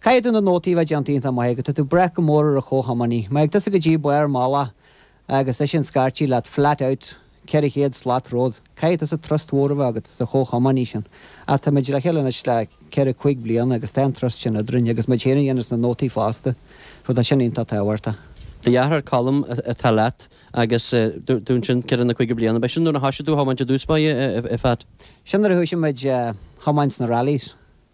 Caithfidh tú na nótaí a bheith déanta iontach maith agus tá tú ag brath go mór ar an chomhthiománaí. Má thig tusa go dtí barr mala agus eisean ag scairtigh leat flat out 400 slat romhat, caithfidh tusa trust mhór a bheith agat sa chomhthiománaí sin. Ach tá muid le chéile anois le ceithre, cúig bliana agus tá an trust sin eadrainn agus muid féin a dhéananns na nótaí fosta, so tá sin iontach tábhachtach. Do dheartháir Colm atá leat agus dúirt tú ansin ceithre nó cúig bliana. Ba é sin nuair a thoisigh tú a thiomáint i dtús, ba é, a Phat? Sin nuair a thoisigh muid a thiomáint sna rallies.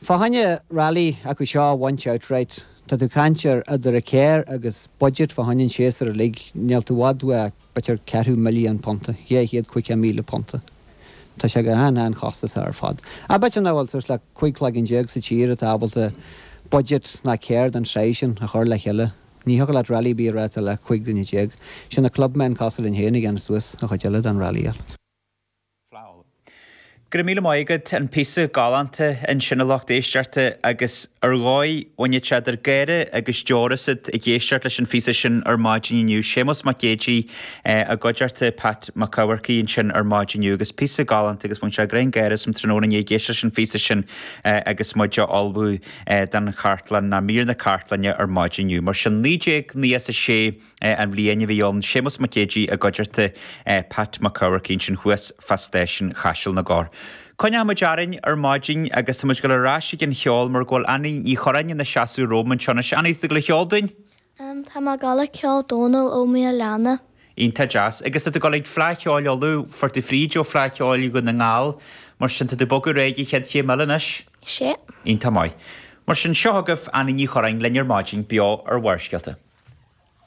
Fá choinne rally acu seo a bhaint outright. Tá tú ag caint ar eadar an carr agus budget fá choinne an tséasúir uilig, níl tú i bhfad ó b'fhéidir ceathrú milliún punta, dhá chéad caoga míle punta. Tá sé go han han-chostasach ar fad. B'fhéidir nach bhfuil thart le cúig cloigeann déag sa tír atá ábalta budget ná carr den tsaghas sin a chur le chéile? Ní thiocfadh leat rally a bheith á reáchtáil le cúig dhuine déag. Is iad na clubmen cosúil linn féin a dhéanann suas an chuid eile den rally. Flail. Go raibh míle maith agat an píosa galánta ansin a lucht éisteachta agus ar dhóigh bhainfeadh sé eadar gáire agus deor asat ag éisteacht leis an phíosa sin ar maidin inniu, Séamus Mac Géidigh i gcuideachta Pat Mac Eamharcaigh ansin ar maidin inniu agus píosa galánta agus bhain sé greann gáire asam tráthnóna inné ag éisteacht leis an phíosa sin agus muid á ullmhú don chartlann, na míreanna cartlainne ar maidin inniu. Mar sin, naoi déag nócha a sé. an bhliain a bhí ann, Séamus Mac Géidigh i gcuideachta Pat Mac Eamharcaigh ansin thuas fá Stáisiún Chaiseal na gCorr. Coinneoidh muid orainn ar maidin agus tá muid ag dul ar ais ag an cheol mar go bhfuil Annie Ní Churráin ina seasamh romham anseo anois. Annie, tá tú ag dul a cheol dúinn? Tá mé ag dul ag ceol Dónal Ó Maoláine. Iontach deas. Agus tá tú ag dul ag Fleadh Cheoil Uladh, fuair tú fríd ó Fleadh Cheoil Dhún na nGall, mar sin tá tú ag bogadh ar aghaidh don chéad chéim eile anois? Sea. Iontach maith. Mar sin, seo agaibh Annie Ní Churráin linn ar maidin, beo ar Bharrscéalta.